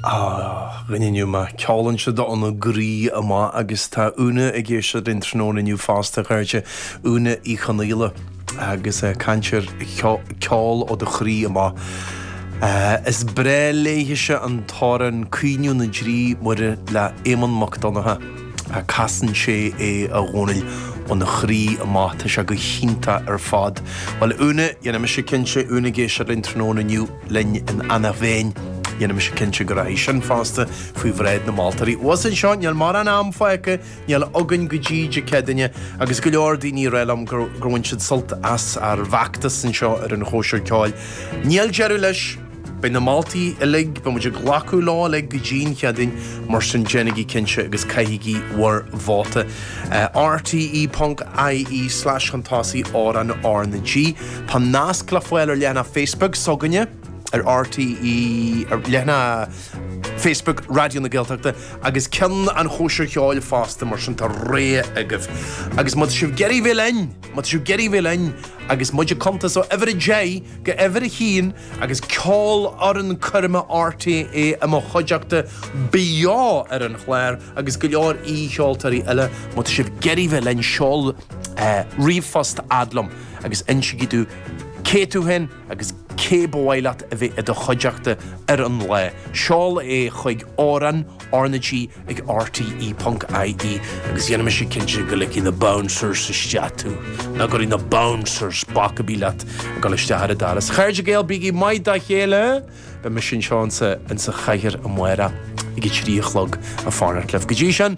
Ah, dhuine, an-mhaith. Ceolann sé óna chroí amach agus tá Úna ag éisteacht linn tráthnóna inniu fosta, a chairde, Úna Uí Chonaola agus í ag caint ar cheol ó do chroí amach. Is breá léithise an t-amhrán Caoineadh na dTrí Muire le Éamonn Mac Donncha. Casann sé é, a Dhónaill, óna chroí amach. Tá sé go hiontach ar fad. Bhuel, Úna, dhéanfaidh mise cinnte, Úna ag éisteacht linn tráthnóna inniu. linn in Eanach Mheáin. Dhéanfaidh mise cinnte go rachaidh sin fosta faoi bhráid na moltóirí. Abhus anseo, níl mórán am fágtha, níl againn go dtí Dé Céadaoine, agus go leor daoine ag rá liom gur bhain siad sult as ár bhfeachtas anseo ar an Chóisir Ceoil. Níl deireadh leis! Beidh na moltaí uilig, beidh muid ag glacadh leo uilig go dtí an Chéadaoin, mar sin déanaigí cinnte agus caithigí bhur vóta. RTÉ.ie slash chun tosaigh amhrán R na G. Tá nasc le fáil ar leathanach Facebook s'againne ar RTÉ, ar leathanach Facebook Raidió na Gaeltachta agus ceann an chóisir cheoil fosta mar sin tá réidh agaibh. Agus má tá sibh ag iarraidh bheith linn, má tá sibh ag iarraidh bheith linn agus muid ag cuntas ó uimhir a deich go uimhir a haon agus Ceolfhoireann Coirme RTÉ i mo chuideachta beo ar an chlár agus go leor aoi-cheoltóirí eile má tá sibh ag iarraidh bheith linn seol ríomhphost fhad liom. agus insigí domh cé tú fhéin agus cé ba mhaith leat a bheith i do chuideachta ar an lá. Seol é chuig amhrán, RnaG, ag rte ponc IE agus dhéanfaidh mise cinnte go ligfidh na bouncers isteach tú. Nach gcuirfidh na bouncers bac ar bith leat ag dul isteach ar an doras. A chairde Gael, bígí maith dá chéile! Beidh mise anseo insa chathaoir amárach ag a 3 a chlog ag fanacht libh. Go dtí sin.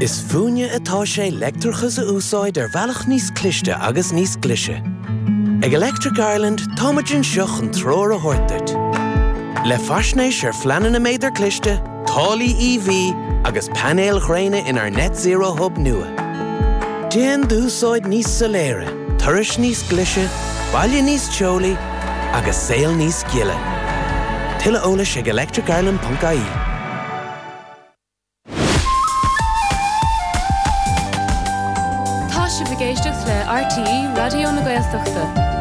Is fúinne atá sé leictreachas a úsáid ar bhealach níos cliste agus níos glaise. Ag Electric Ireland, táimid anseo chun treoir a thabhairt duit. Le faisnéis ar phleananna méadar cliste, táillí EV agus painéil ghréine inár Net Zero Hub nua. Déan d'úsáid níos soiléire! Turais níos glaise, baile níos teolaí agus saol níos gile. Tuilleadh eolais ag electricireland.ie. Tá sibh ag éisteacht le RTÉ Raidió na Gaeltachta.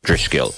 Drisceoil.